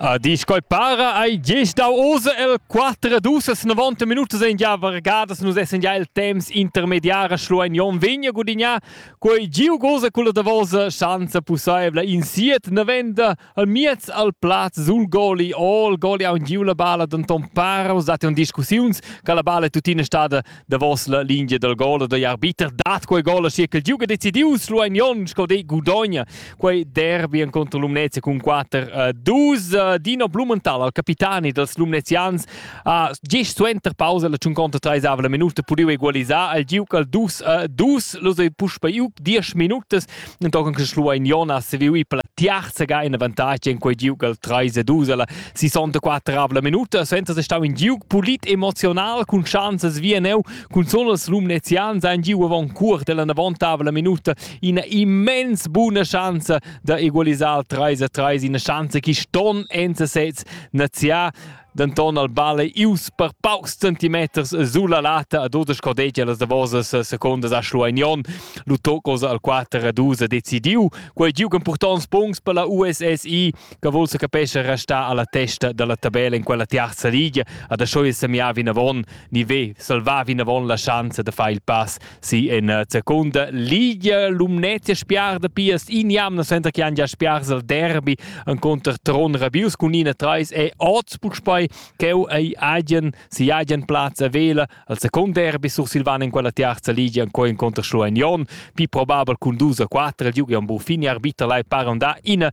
A dis quai para ei gest dau osa el 4 dusas 90 minutas en gia vargadas nus essen ja il temps intermediara schluein Jon Vigna gudignar quei giu goza culla davosa schanza pussaevla in siet novenda al miez al plaz sul goli all goli ha un giu la balla denton para us date un discussiuns che la balla è tuttina stada davos la linea dal gol da arbiter dat quei gol sia che giuga decidius lu ein Jon sco de Gudogna quei derby en contro Lumnezia cun 4-2 Dino Blumenthal al capitani dels Lumnezians ha gest suenter pausa la tschun conta treisava la minuta pudiu egalisar al giuc al dus 2 los ei puspa iuc 10 minutas Entochen che Schluein Jonas seviu ì per la tiarza ga in avantatg en quei giug al 3 a 2 alla 64 avla minuta, senza se stau in giug pulit emozional cun chanzas via neu, cun solo els Lumnezians ein giu avon cuort della navontabla minuta ina immens buna chance da egalisar al 3 a 3, ina chance che ston enza sez naziar denton al bal ei ius per paucs centimeters sul la lata a dudesch cordegia las davosas secondas a Schlueignon. Lu tocos al 4 a 2 ha decidiu. Quei giug impurtonts punts per la USSI che vul se capesce restar alla testa dalla tabella in quella tiarza liga. Ad Aschoi semiar vinavon, ni ve salvar vinavon la schanza de far il pass Sì, in uh, seconda Liga Lumnezia spiar da Pias in jamna center che han già spiars al derby en contr Tron Rabius cun ina 3 e Augsburg spei cheu ei agen si agen plaz a vela al second derby sur Silvan in quella terza Liga en co in contr Schlueignon, più probabel cun dus a 4 il Julian Buffini arbitra lai paron da ina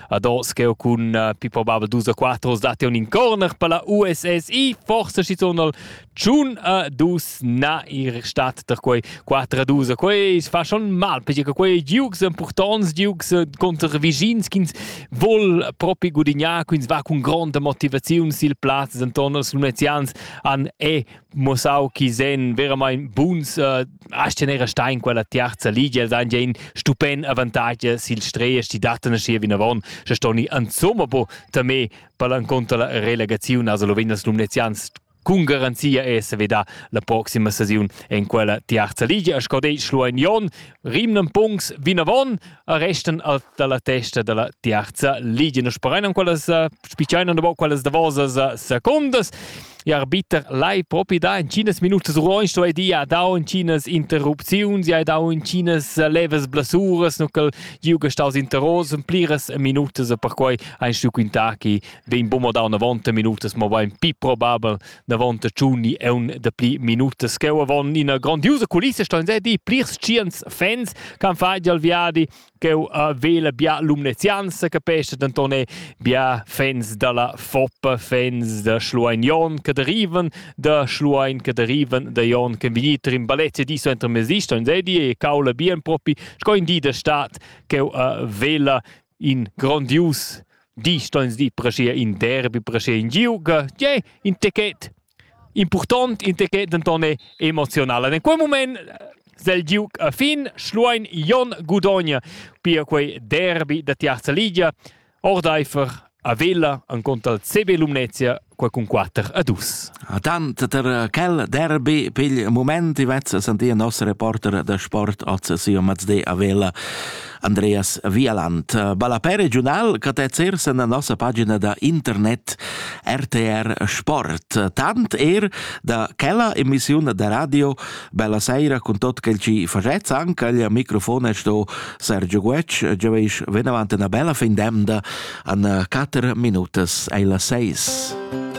Ados che cun uh, più probabile dus a quattro dati un in corner per la USSI forse ci sono Tschun a dus na ir stat per quei 4 a 2 quei fa schon mal perché che quei Dukes importants Dukes eh, contro Vigins ch'ins vol propi gudignar quins va con grande motivaziun sil plaz intorno als Lunezians an e mussau chi sen veramaing buns uh, as tener a stein quella tiarza ligia el dan in stupend avantage sil strees ti datten schi vinavon se stoni ansomma bo tamé palan contra la relegazione also lo vendas lumnezians con garanzia è se veda la proxima sesiun en quella tiarza ligia sco dei schluein jon rimnen punks vinavon a restan al dalla testa dalla tiarza ligia. Nus sperein quellas spicciain und quellas davosas secondas. E arbiter lai propi da in cinas minutas ruoins sto di ha dau in cinas interrupziuns e ha dau in cinas levas blasuras nu cal giuga staus interros en pliras minutas per quei ein stu quintà chi vegn bumo da una volta minutas mo bein pi probabel davant da Tschuni è un dapli minutas che avant ina grandiosa culissa sto di plirs tschients fans che fa al viadi che uh, vela bia lumnezianza capisce denton è bia fans dalla Foppa fans da Schluein Jon che derivan da Schluein che derivan da Jon che venite in baletta di so entre mesi sto di e caula bien propi sco in di da stat che uh, vela in grondius di sto ins dir preschia in derbi preschia in giuga tgei in ticket impurtont in ticket denton è emozional in quel moment zel giug a fin Schluein Jon Gudogna pia quei derbi da Tiaza Ligia ordeifer a Vella en contra al CB Lumnezia qua cun quatter a dus. Tant ter quel derby pigl moment i vezza sentia nos reporter da sport oz sia mazde a Vela Andreas Vialand. Ballapè regional catezzer sen la nossa pagina da internet RTR Sport. Tant er da quella emissiun da radio Bella seira con tot quel ci facez anche il microfon è sto Sergio Guec, già veis ven avanti una bella fin demda an 4 minutas ai la 6.